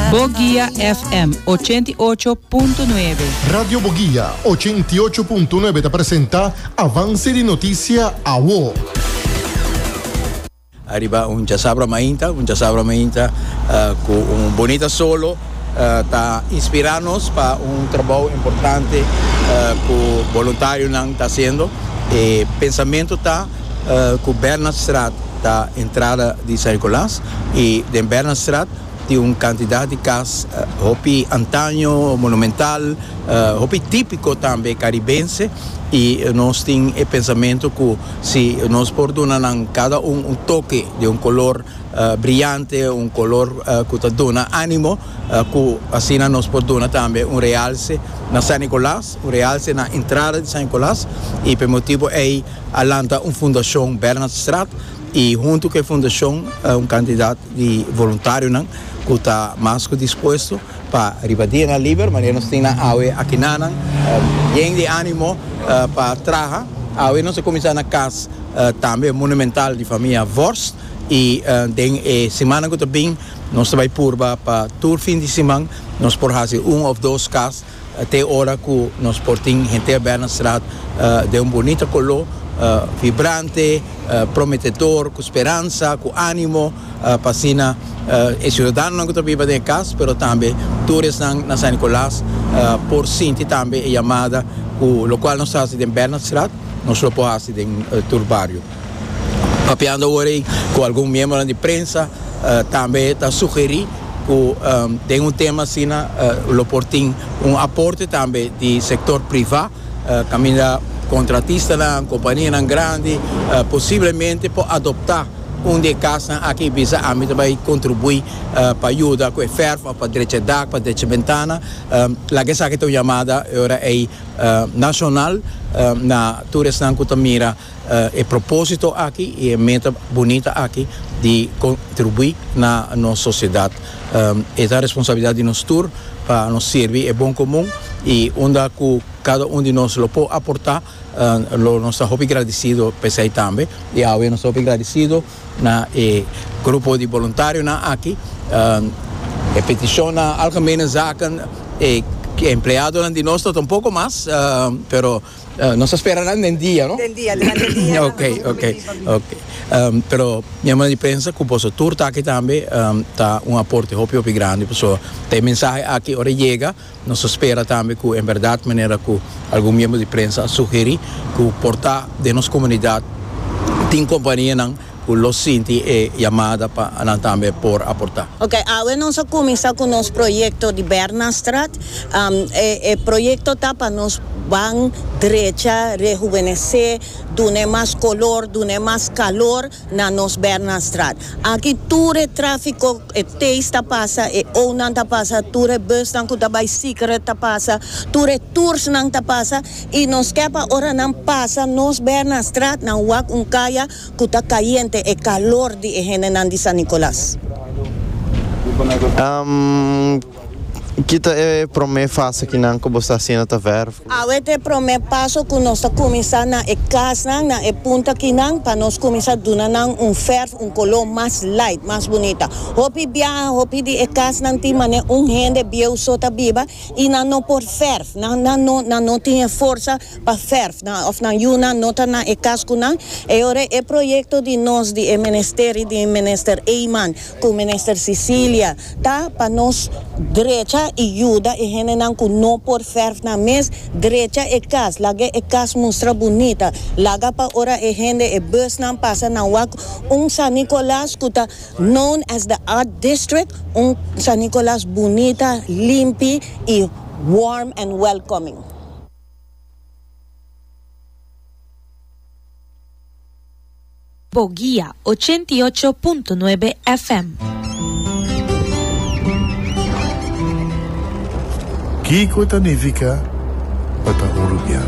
Boguia FM ochenta i ocho punto nuebe. Radio Boguia ochenta i ocho punto nuebe ta presenta Avance di Noticia Awo. Ariba un chasabra mainta, un chasabra mainta cu un bonita solo ta inspira nos pa un trabao importante cu boluntarionan ta haciendo. E pensamiento ta. ku Bernardstraat ta entrada di San Nicolas i den Bernardstraat tin un kantidat di kas hopi antaño, monumental, hopi típiko tambe karibense i nos tin e pensamentu ku si nos por duna nan kada un un toke di un kolor briante, un kolor ku ta duna ánimo ku asina nos por duna tambe un realse na San Nicolas, un realse na entrada di San Nicolas i p'e motibu ei a lanta un fundashon Bernhardstraat i huntu ku e fundashon un kantidat di voluntarionan ku ta mas ku dispuesto pa riba dia na liber manera nos tin nan awe aki na nan yen di animo pa traha. Awe nos a kuminsá na kas tambe monumental di famia Vorst i den e simannan ku ta bin nos ta bai purba pa tur fin di siman nos por hasi un òf dos kas Te ora cu nos por tin hente a bel na straat den un bunita color, vibrante, prometedor, cu speransa, cu animo, pa asina e ciudadanonan cu ta biba den e cas, pero tambe tur esnan na San Nicolas por sinti tambe e yamada cu locual nos ta haci den bel na straat, nos lo por haci den tur bario. Papiando awor ei cu algun miembronan di prensa tambe ta sugeri cu den un tema asina lo por tin un aporte tambe di sector priva caminda contratistanan, companianan grandi posiblemente por adopta un di e casnan aki y bisa ami ta bay contribui pa yuda cu e verf of pa drecha e dak, pa drecha e bentana, laga esaki ta un yamada e ora ei nacional na tur esnan cu ta mira. E propósito aki i e meta bunita aki di kontribuí na nos sosiedat e ta responsabilidat di nos tur pa nos sirbi e bon komun i unda ku kada un di nos lo por aportá lo nos ta hopi gradisido p'esei tambe i awe nos ta hopi gradisido na e grupo di boluntarionan aki e petishon na Algemene Zaken e empleadonan di nos tampoco mas pero. Nos a spera nan den dia, no? Den dia, durante dia nan a pone un menti pa mi. Oke, oke. Pero mi a manda di pensa ku boso tur ta aki tambe ta un aporte hopi hopi grandi, paso ta e mensahe aki ora e yega nos a spera tambe ku en bèrdat manera ku algun miembro di prensa a sugerí ku por ta den nos komunidat tin kompanianan Cu lo sinti e yamada pa nan tambe por aporta. Ok, awe nos a cuminsa cu nos proyecto di Bernastrat. E proyecto ta pa nos ban drecha rehubenece, dun'e mas color, dun'e mas calor na nos Bernastrat. Aki tur e trafico, e tays ta pasa, e onan ta pasa, tur e busnan cu ta bay Siquerret ta pasa, tur e toursnan ta pasa y nos ke pa ora nan pasa nos Bernastrat nan wak un caya. ku ta kayente e kalor di e hendenan di San Nicolas. Ki ta e promé fase ki nan ku bo sta asina ta vèrf? Awe ta e promé paso ku nos ta kuminsá na e kasnan, na e punta akinan, pa nos kuminsá duna nan un vèrf, un koló mas lait, mas bunita. Hopi biaha, hopi di e kasnan tin manera un hende bieu so ta biba i nan no por vèrf, nan no tin e forsa. pa ferf nan of nan yu nan no ta na e kaskunan e ora e proyekto di nos di e ministeri di Minister Eyman ku Minister Cecilia ta pa nos drecha i yuda e hendenan ku no por ferf nan mes drecha e kas laga e kas mustra bunita laga pa ora e hende e busnan pasa nan wak un San Nicolas ku ta known as the art district un San Nicolas bunita limpi i warm and welcoming. Bo guia, ochenta i ocho punto nuebe FM. Kiko ta nifica pa ta un rubian?